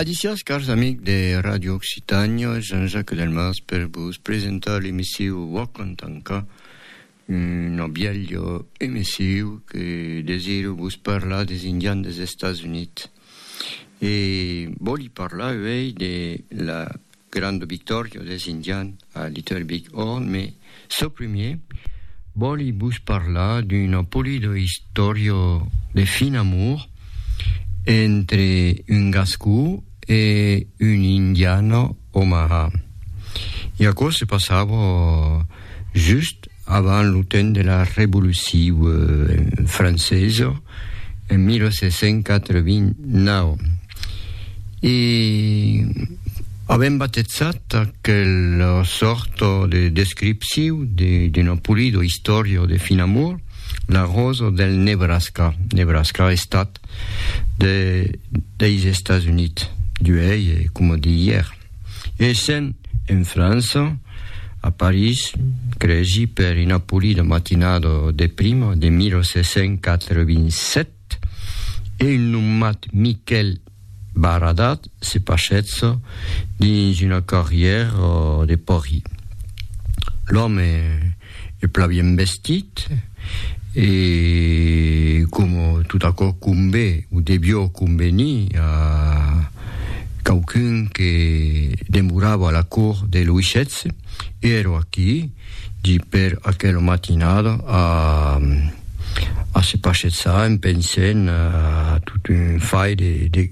Adicias cars amics de Radio Occitània, Jean-Jacques Delmas per vos presentar l'emissiu Walk on Tanca, una bièlha emissiu que desiro vos parlar des Indians des Estats Units. E vòli parlar uèi de la Grande victòria des Indians a Little Big Horn, me çò primier vòli vos parlar d'una polida istòria de fin amor entre un gascó e un indiana omaha. E aquò se passava just avant lo temps de la Revoluciu francesa en 1789. E avèm batezat aquela sòrta de descripciu d'una polida istòria de Finamor la rosa del Nebraska. Nebraska, estat de, deis Estats Units, d'uèi e coma de ièr. Essent en França, a París, cresi per una polida matinada de prima de 1787, e un nomat Miquèl Baradat se pachètza dins una carrièra de pòrri. L'òme e plan bien vestit e coma tot aquò convé o devió convenir a quauqu'un que demorava a la cort de Louis xvi, èra aquí di per aquela matinada a a se paschezar en pensent a tot un fai de de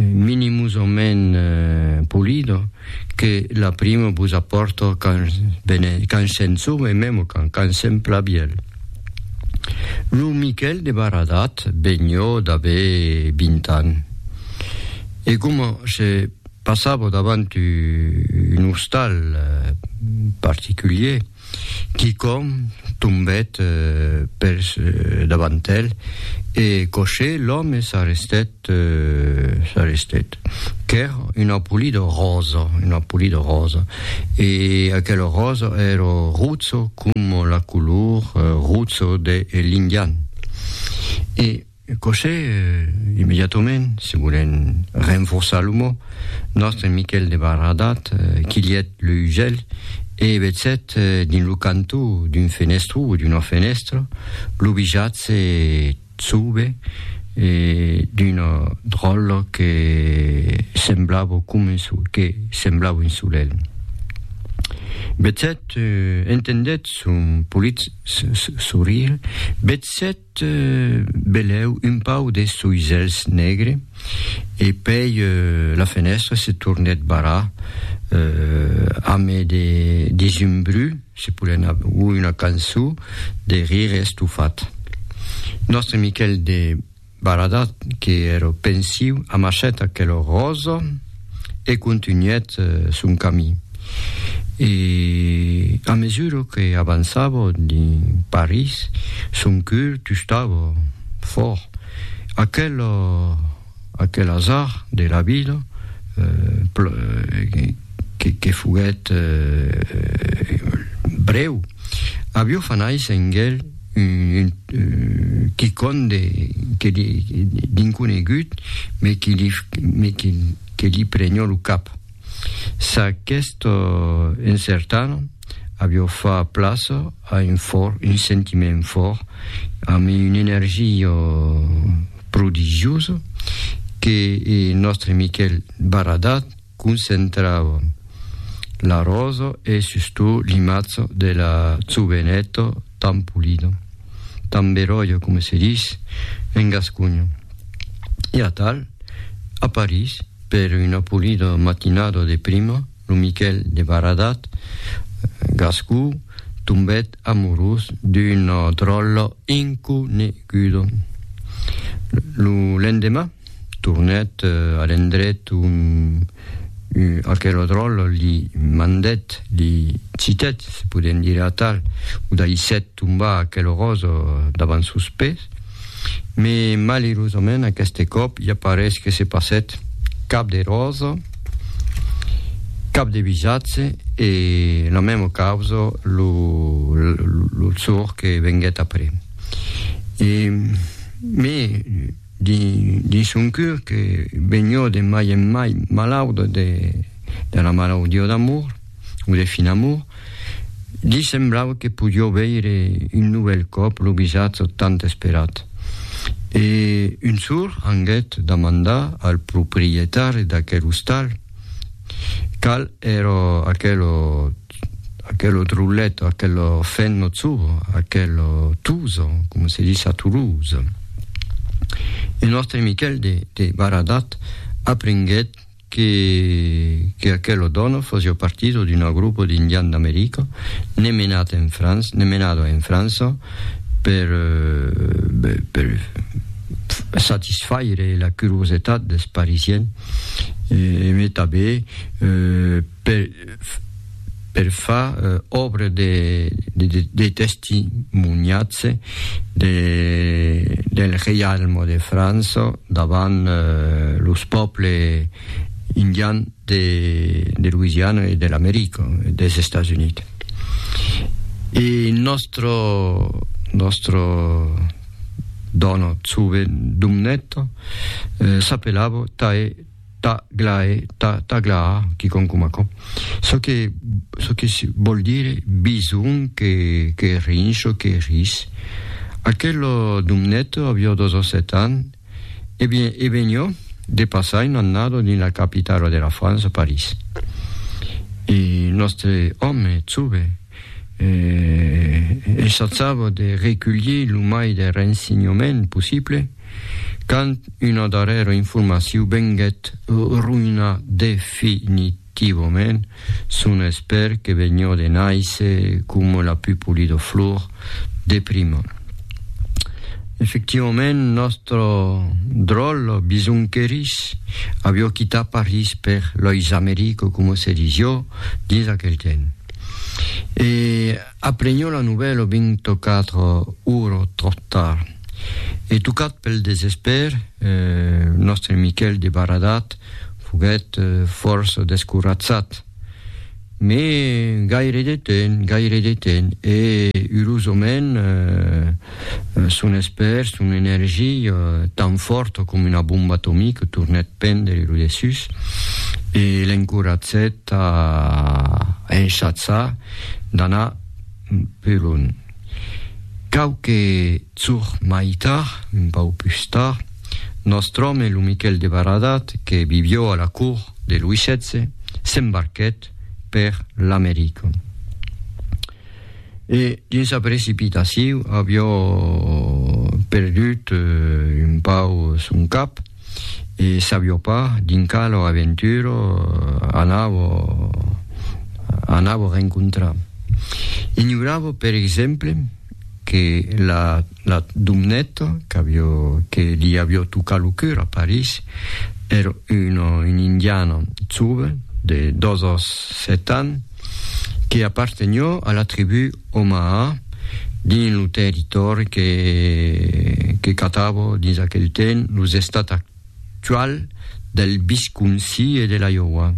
minimosament polido que la primo vos apòrto quand vene, quand se'n sou e memo quand, quand se'n plabièl. Lo Miquèl de Baradat venió d'aver vint ans e coma se passavo davant un ostal particulier, Quicòm tombèt per davant el e coshé l'òme s'arrestèt, s'arrestèt. Qu'èr una polida ròsa, una polida ròsa. E aquela ròsa èra rutzo com la color rutzo de l'indian. E. Cossé, immediatament, se volèn renforçar lo mot, nòstre Miquèl de Barradat quilhèt le usèl e vezèt dins lo cantó d'un fenestró o d'una fenèstra lo visatge chauve d'una dròlla que semblava coma un so, que semblava un solelh. Vezèt, entendèt son polit sorire, vezèt, Te belèu un pau des soisèls negre e pèi la fenèstra se tornèt barrar ame de desumbrú, se polèn a ui una cançó de rire estofat. Nòstre Miquèl de Baradat, que ère pensiu, amachèt aquela ròsa. e contunhèt son camí. E a mesura que avançava dins París, son cœur tustava fòrt. Aquel, aquel azar de la vida que, que foguèt brèu. Avió fa nais en gel un quicon de que li d'inconegut me qui li me qui que li prenhó lo cap. Sa questò encertant avió fa plaça a un fòr un sentiment fòr amb un energia prodigiosa que e nòstre Miquel Baradat concentrava l'arròso e sustot limazzo de la zubenetto tan pulido, tan beròio coma se dis en gasconho. E atal, a París, per una pulida matinada de prima, lo Miquèl de Baradat, gascon, tombèt amorós d'un dròlle inconegudo. Lo lendeman, tornèt a l'endret on aquel dròl li mandèt, li citèt, se podèm dire atal, o daissèt tombar aquel ròsa davant sos pès, me malerosament aqueste còp ja parés que se passèt, cap de ròsa, cap de visatge e la mèma causa lo lo jorn que venguèt après. E me dins son cur que benhò de mai en mai malaut de la malaudió d'amor o de fin amor, li semblava que podió veire un novèl còp lo visatj tant esperat. E un sour anguèt damandar al proprietari d'aquel ostal qual èra aquel Aquelo drollet, aquelo fennozo, aquelo tuso, coma se dis a Toulouse. E nòstre Miquèl de, de Baradat aprenguèt que, que aquelo dòno fosió partido d'una grupo d'indian d'America, ne menat en França, ne menado en França per, be, per satisfaire la curiosetat des Parisiens, e, e me tabé, eh, per, per far òbra de de testimonhatge de del reialme de França davant los pòble indian de de Louisiana e de l'America des Estats Units. E nòstre nòstre dòna Tsuve Dumnèt s'apelava Tae Ta glae, ta, ta glaa, quicòm coma aquò. Çò que, çò que vòl dire bison que, que rinsh o que ris. Aquel domnet avió dos o set ans, e bien, e venió de passar un annado dins la capitala de la França, París. E nòstre òme, Tsuve, eh, essatzava de reculhir lo mai de rensinhament possible, quand una darrèra informacion venguèt roïnar definitivament son espèr que venió de nàisser coma la plus polida flor de prima. Efectivament, nòstre dròl bisonquerís avió quitat París per Lois America, coma se disió dins aquel temps. E aprenhó la novèla au 24 ora tròp tard. E tocat pel desespèr, nòstre Miquèl de Baradat foguèt fòrça descoratzat. Mé gaire de temps, gaire de temps, e urosament, Son espèr, son energia, tan fòrta coma una bomba atomica, tornèt prendre lo dessús e l'encoratgèt a enchaçar d'anar pus lunh. Quauque jorn mai tard, un pauc pus tard, nòstre òme, lo Miquèl de Baradat, que vivió a la cort de Louis xvi, s'embarquèt per l'America. E dins la precipitaciu avió perdut un pau son cap e sabió pas dins quala aventura anavo anavo rencontrar. Ignoravo per exemple que la La Dumneta, qu'avió, que li avió tocat lo cur a París, èra una, una indiana jove de dos o sèt ans que apartenió a la tribú Omaha dins lo territòri que, que catava dins aquel temps los Estats actual del Visconsi e de l'Iowa.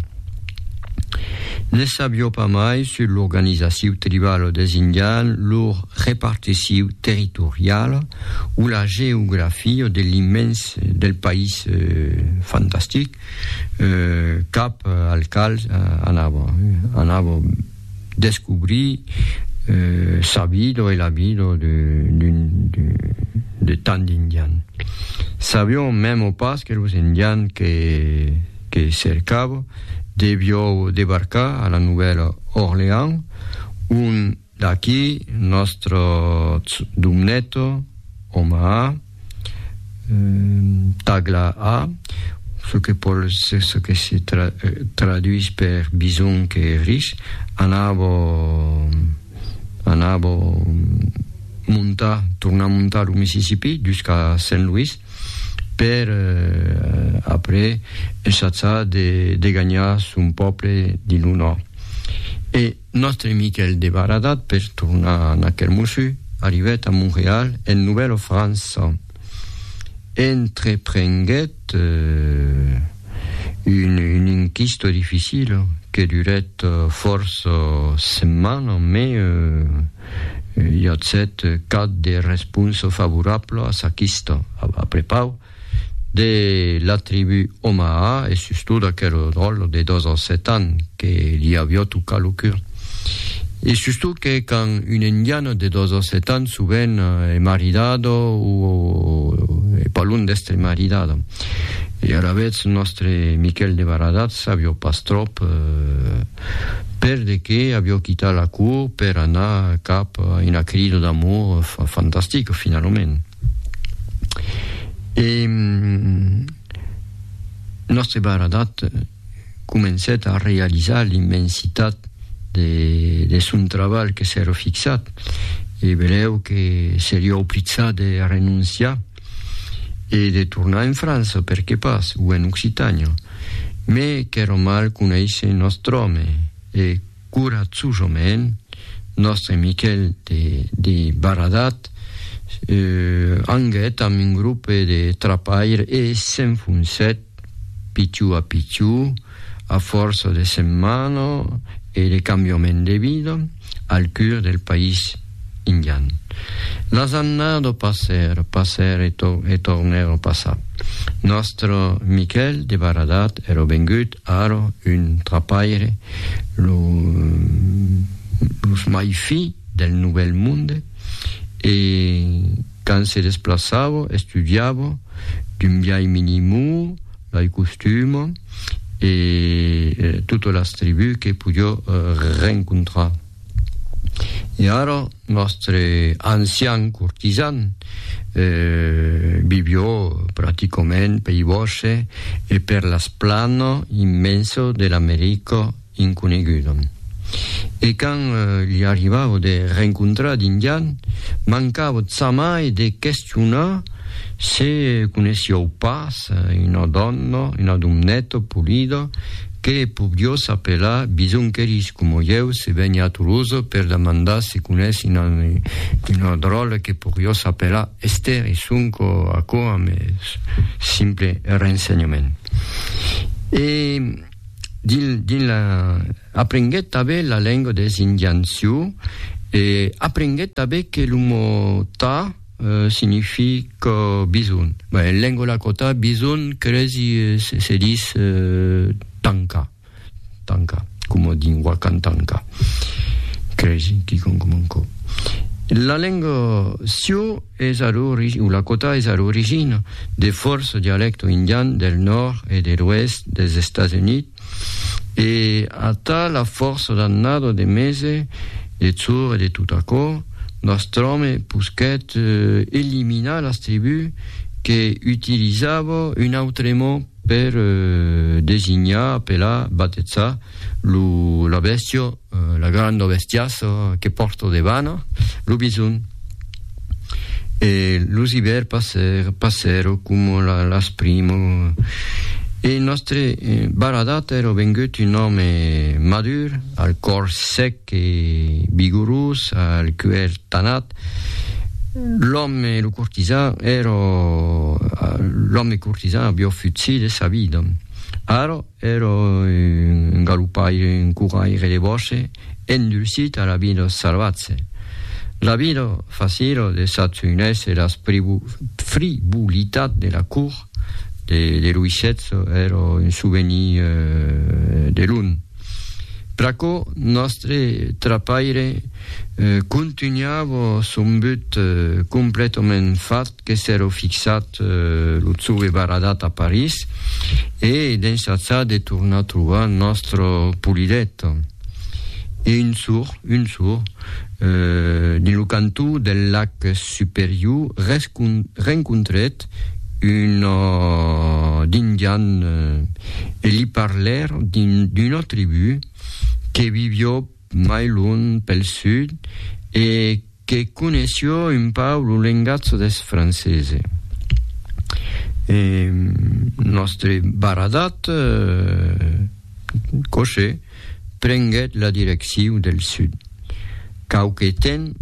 Ne sabió pas mai sus l'organizaciu tribalo des Indian, lor reparticiu territoriala o la geografia de l'immens del país fantastic cap al cal anava. Descobrir sa vida e la vida de tant d'indians. Sabion memo pas que los indians que cercava devion debarcar a la Novèla Orleans, ont d'aquí nòstre Domneta, Omaha, Tagla a, ce que pòl se ce que se tra, traduís per bison que ris, anar bo, anar bo montar, tornar montar lo Mississipí jusqu'a Saint Louis per après ensajar de de ganhar son pòble dins lo nòrd. E Nòstre Miquèl de Baradat, per tornar a Naquèl Mossu, arribèt a Montreal en Novèla França. Entreprenguèt un inquista dificila que durèt fòrça setmana, mai i atzèt cap de responsa favorabla a sa quista. Aprepau, de la tribu Omaha e sustot aquel dròlle de dos ans set ans que li avió tocat lo cur. E sustot que quand un indian de dos ans set ans sovent e maridado o e pas lon d'estre maridado. E alavetz nòstre Miquel de Baradatz avió pas tròp per de qué avió quitat la cour per anar cap a una crida d'amor fantastica finalament. E Nòste Baradat comencèt a realizar l'immensitat de, de son trabalh que s'èra fixat, e velèu que seriá oblizat de renonciar e de tornar en França, per que pas, o en Occitània. Mes qu'èra mal conéisser nòstr'òme, e Coratjosament, nòstre Miquèl de Baradat anguèt amb un grope de trapair e s'enfonsèt pichou a pichou, a fòrça de setmanas e de cambiament de vida, al cur del país indian. Las annadas passèron, passèron e tornèron passar. Nòstre Miquèl de Baradat èra vengut Ara, un trapaire, lo los mai fi del Novèl Monde, e quand se desplaçava, estudiava, d'un biais minimur, lai costuma, e tota las tribus que podió rencontrar. E ara, nòstre ancian cortisan vivió practicament pei bòsche e per las plana immensa de l'America inconeguda. E quand li arribava de rencontrar d'Indian, mancava jamai de questionar se coneissiáu pas una dòna, una domneta polida, que pobriós apelar bisonqueris coma ieu se vègne a Tolosa per demandar se conèsse una una dròlla que pobriós apelar Esther e sonque aquò amb es simple rensenhament e dins dins la aprenguèt tanben la lenga des indians sioux e aprenguèt tanben que lo mot ta Signifie que bison. En lenga lakota, bison cresi se dis tanka, tanka, coma dins Wakan Tanka, cresi, quicòm coma aquò. La lenga sio es a l'origina, o lakota es a l'origina de fòrça dialècto indian del nòrd e de l'oèst dels Estats Units, E atà la fòrça dannada de mese, de chor e de tot aquò, Nostròme posquèt eliminar las tribús que utilizava un autre mot per designar, apelar, batezar, lo, la bèstia, La granda bestiassa que pòrto debana, lo bison. E los ivèrs passèron, passèron coma las primas. E nòstre Baradat èra vengut un òme madur, al còr sèc e vigorós, al cuèr tanat. L'òme, lo cortisan, èra, l'òme cortisan aviá fut si de sa vida. Ara, Ero un galopaire, un couraire de bosse, endursit a la vida salvatse. La vida facila de Satugnés e las fribulitats de la cour de Louis xvi ero un souvenir de lon. Pr'aquò, nòstre trapaire contunhava son but completament fat que s'èro fixat lo zove baradat a París e d'ensajar de tornar trobar nòstre Polidet. E un sour, un sour, dins lo cantó del lac Superior, rencontrèt un indian e li parlèr d'una tribú que vivió mai lunh pel sud e que conéishió un pauc lo lengatge deth francese. E nòstre baradat coche prenguèt la direcciu del sud. Quauque temps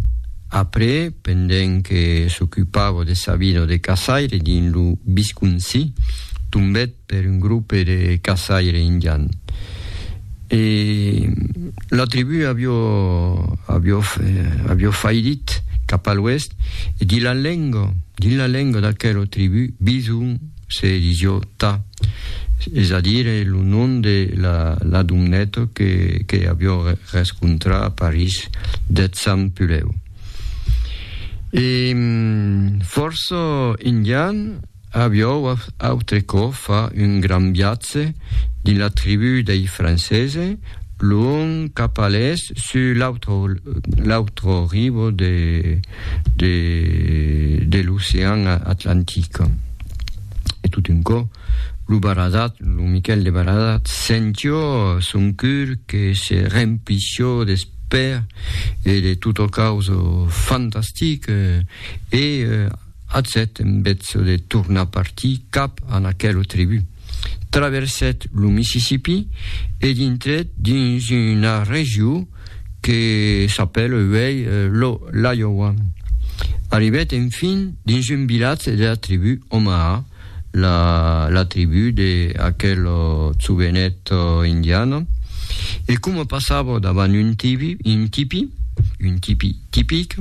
après, pendent que s'ocupava de sa vida de caçaire dins lo Visconsi, tombèt per un grope de caçaire indian e la tribu avió avió avió faidit cap a l'oèst e dins la lenga dins la lenga d'aquela tribu bison se disió ta es a dire lo nom de la la doneta que que avió rescontrar a París deth sant Pulèu e fòrça indian Aviou autrecò fa un grand viatge dins la tribú dei Francese, luònh cap a l'èst sus l'autre ribo de l'ocean Atlantic. E tot un cò, lo Baradat, lo Miquèl de Baradat, sentió son cur que se remplissió d'espèr e de tot o caus fantastic e, Atzèt en betzo de tornar partir cap a n'aquelo tribu. Traversèt lo Mississippi e dintrèt dins una regió que s'apèla uèi lo l'Iowa. Arribèt enfin dins un vilatge de la tribu Omaha, la tribú de aquel jovenet indian, e coma passava davant un tibi, un tipi, un tipi tipic,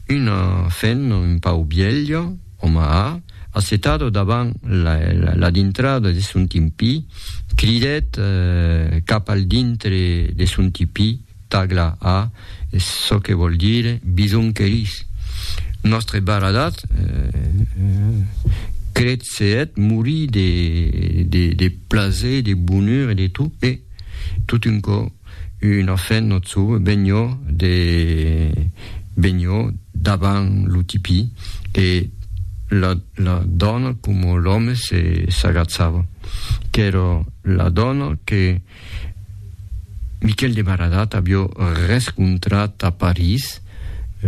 una fen un pau bielha, oma a, assetada davant la dintrada de son timpí, cridèt cap al dintre de son tipi, Tagla a, es çò que vòl dire bisonqueris. Nòstre baradat, crèt se hèt morir de, de, de plaser, de bonur e de tot, e, tot un cò, una fin nòt sauve benlhò de, benlhò davant lo tipí, e la, la dòna coma l'òme se, s'agatzava. Qu'èra la dòna que. Miquel de Baradat avió rescontrat a París,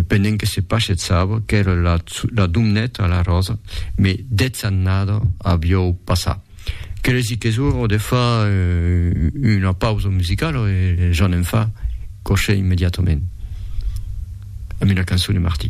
pendent que se pachetsava, qu'èra la Domnet a la Ròsa, mes dètz annada avió passà. Qu'eres dic qu'es ora de far una pausa musicala e ja ne'n fa, coche immediatament, amb una cançon de Martí.